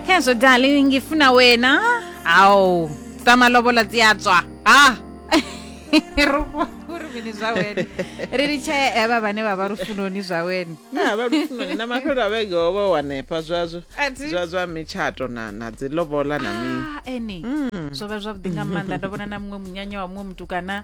khezwo dali ngifuna wena awu ta malovola ti ya tswa ha rufuni zwa wena ri ri tshee eva vhane vha vha lufunoni zwa wena Ah, vha lufunoni na mafhelo a vhege ho vha wanefha zwazwo A thi- zwa zwa mitshato na na dzi lobola na mini Ah, eni zwo vha zwavhuḓi nga maanḓa ndo vhona na muṅwe munyanya wa muṅwe mutukana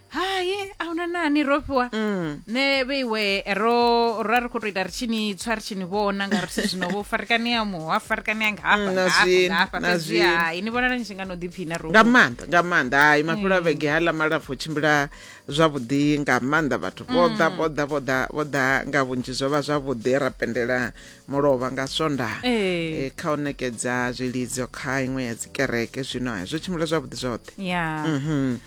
hai a huna nani ro fhiwa Mm. ne vheiwe ro ra ri khou tou ita ri tshi ni tswa ri tshi ni vhona nga ri si zwino vho farikanea muho a farikanea nga hafha Mm, na nga hafha, zwino, nga hafha na fhedzi zwino. hai ni vhonala ni tshi nga no ḓiphina ro nga maanḓa nga maanḓa hai mafhelo a vhege haḽa malapfu o tshimbila zwavhuḓi nga maanḓa vhathu vho ḓa vho ḓa vho ḓa vho ḓa nga vhunzhi zwo vha zwavhuḓi ra pendela mulovha nga swondaha Ee. Eh, kha u nekedza zwilidzo kha iṅwe ya dzikereke zwino hai zwo tshimbila zwavhuḓi zwoṱhe ya Mhm.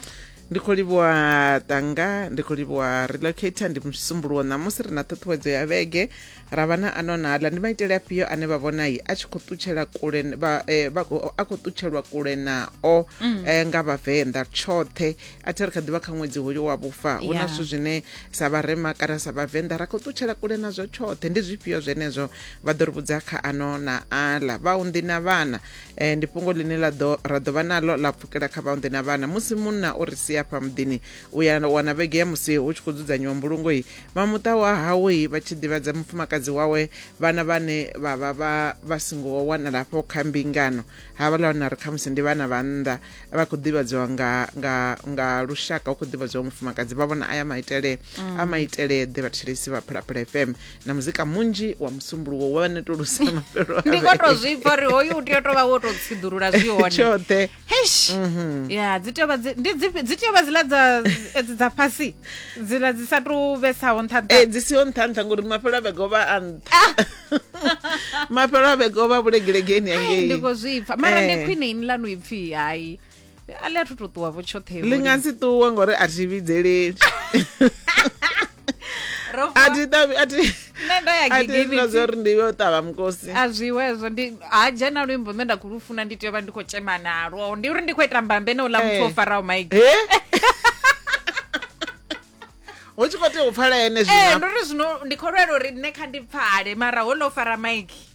ndi khou livhuwa tanga ndi khou livhuwa relocator ndi musumbuluwo ṋamusi ri na ṱhuṱhuwedzo ya vhege ra vha na ano na aḽa ndi maitele afhio ane vha vhona yi a tshi khou ṱutshela kule n- vha, eh, vha, khou- a khou ṱutshelwa kule nao eh, nga vhavenḓa tshoṱhe a thi ri kha ḓivha kha ṅwedzi hoyo wa vhufa hu na Yeah. zwithu zwine sa vharema kana sa vhavenḓa ra khou ṱutshela kule nazwo tshoṱhe ndi zwifhio zwenezwo vha ḓo ri vhudza kha ano na aḽa vhaunḓi na vhana eh, ndi fhungo ḽine ḽa ḓo ra ḓo vha naḽo ḽa pfukela kha vhaunḓe na vhana musi munna o ri sia fha muḓini u ya wana vhege ya musi hu tshi khou dzudzanyiwa mbulungo i vha muṱa wa hawe i vha tshi ḓivhadza mufumakadzi wawe vhana vhane vha vha vha vha singo wanala hafho kha mbingano ha vha ḽa wana ri khamusi ndi vhana vha nnḓa vha khou ḓivhadziwa nga, nga, nga lushaka hu khou ḓivhadziwa mufumakadzi vha vhona aya maitele a maitele ḓe vhathetshelesi vha phalaphala fm na muzika munzhi wa musumbuluwo wa netulusa mafhelo a ndi vhege. koto zwi pfa uri hoyu u tea u tovha wo to tsiḓulula zwi hone tshoṱhe Eish. ya dzi tea u vha dzi- ndi dzifhi- dzi tea u vha dziḽa dza edzi dza fhasi dziḽa dzi sa tu vhesaho nṱha nṱha Eh, dzi siho nṱha nṱha ngori mafhelo a vhege o vha a nṱha mafhelo a vhege o vha vhulegelegeni Ai, ndi angei khou zwi pfa mara ndi Eh. khwine ini lanu ipfhi hayi a ḽi a thu to ṱuwa vho tshoṱhe ḽi nga si ṱuwe ngori a thi vhidzeleli a thi ṱavhi a thi nṋe ndo ya gigini zwa uri ndi yo ṱavha mukosi a zwiwe hezwo ndi ha dzhena luimbo nṋe nda khou lu funa ndi tea u vha ndi khou tshema nalwo ndi uri ndi khou ita mbambe na uḽa muthu o eh. faraho maigi eh? hu tshi khou tea u pfala ene zwino eh, ndi uri zwino ndi khou lwela uri nṋe kha ndi pfale mara ho ḽo fara maigi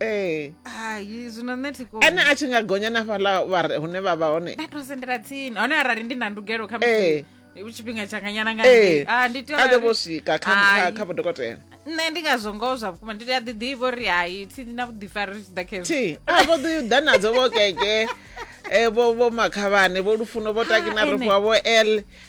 ee hai zwino nṋe thi koni ane a tshi nga gonya na fhaḽa vha re- hune vha vha hone nda to sendela tsini hone arali ndi na ndugelo kha Ee. musi tshifhinga tshanganyana nga ee ngei. Ah, ndi tea a ḓo uri- vho swika kha- kha Hai. kha vhodokotela nṋe ndi ngazwo ngoho zwa vhukuma ndi a ḓi ḓivha uri hai thi na vhuḓifari ri tshi ḓa khezwo thi a vho ḓi ḓa nadzo vho keke eh, vho vho makhavhane vho lufuno vho takina Ah, ene. rofhiwa vho l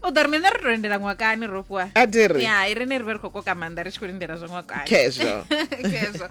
u ḓo ri mine ri to lindela ṅwakani ro fhiwa a ti ri ya i rine ri vhe ri khou koka maanḓa ri tshi khou lindela zwa ṅwakani khezwo khezwo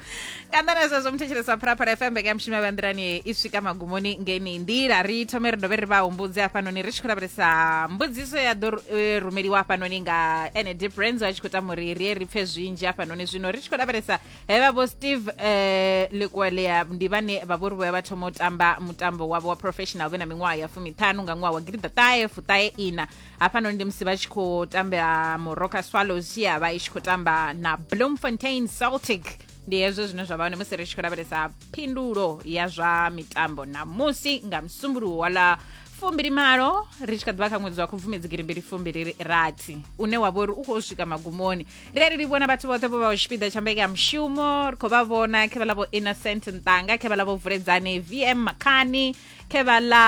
kana na zwezwo muthetshelesi wa phalaphala fm mbeka ya mushumo ya vhanḓilani i swika magumoni ngeni nḓila ri thome ri dovhe ri vha humbudze hafhanoni ri tshi khou lavhelesa mbudziso ya ḓo eh, rumeliwa hafhanoni nga ene deep rands a tshi khou tama uri ri ye ri pfe zwinzhi hafhanoni zwino ri tshi khou lavhelesa hevha vho steve eh, likwelea ndi vhane vha vhori vhoya vha thoma u tamba mutambo wavho wa professional vhe na miṅwaha ya fumiṱhanu nga ṅwaha wa gidiḓa ṱahe fuṱahe ina hafhanoni ndi musi vha tshi khou tambela moroka swallows ya vha i tshi khou tamba na bloemfontein celtic ndi hezwo zwine zwa vha hone musi ri tshi khou lavhelesa phindulo ya zwa mitambo namusi nga msumbuluwo wa ḽa fumbili malo ri tshi kha ḓivha kha ṅwedzi wa khubvumedzi girimbili fumbili rathi une wa vhori u khou swika magumoni ri a ri livhuwa na vhathu vhoṱhe vho vhaho tshipiḓa tsha mbeka ya mushumo ri khou vha vhona khe vha ḽa vho innocent nṱanga khe vha ḽa vho vuledzani vm makhani khe vha ḽa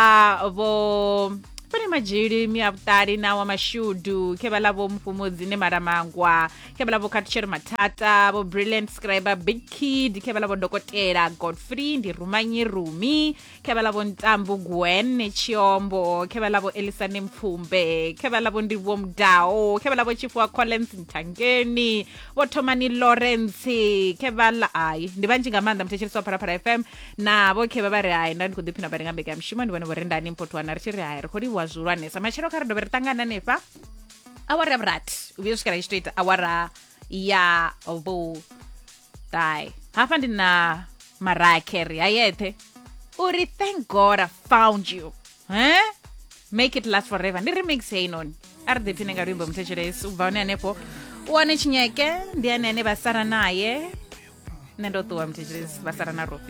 vho fane madzhili mia vhuṱali na wa mashudu khe vha ḽa vho mufhumudzi ne malamangwa khe vha ḽa vho khatshero mathata vho brilliant scriber big kid khe vha ḽa vho dokotela godfrey ndi rumanyi rumi khebalabo ntambu gwen chiombo khebalabo elisane mpfumbe khebalabo ndivho mudao khebalabo chifuwa collins mthangeni vothomani lawrence khebala hayi ndi vhanzhi nga maanḓa muthetshelisi wa phalaphala fm na vho khevha vha ri hayi nda ndi khou ḓiphina vha ri nga mbekanyamushumo ndi vhone vho ri ndani mpotwana ri tshi ri hayi ri khou livhuwa zwihulwanesa matshelo kha ri dovhe ri ṱangana hanefha awara ya vhurathi u vhuya u swikela i tshi tou ita awara ya vhu Bye. Hafha ndi na Mariah Carey a yeṱhe uri thank God I found you. Eh? Make it last forever. Ndi remix heyi noni. A ri ḓipfine nga luimbo muthetshelesi u bva hone hanefho u wane tshinyeke ndi ane ane vha sara naye nṋe ndo ṱuwa muthetshelesi vha sara na rofi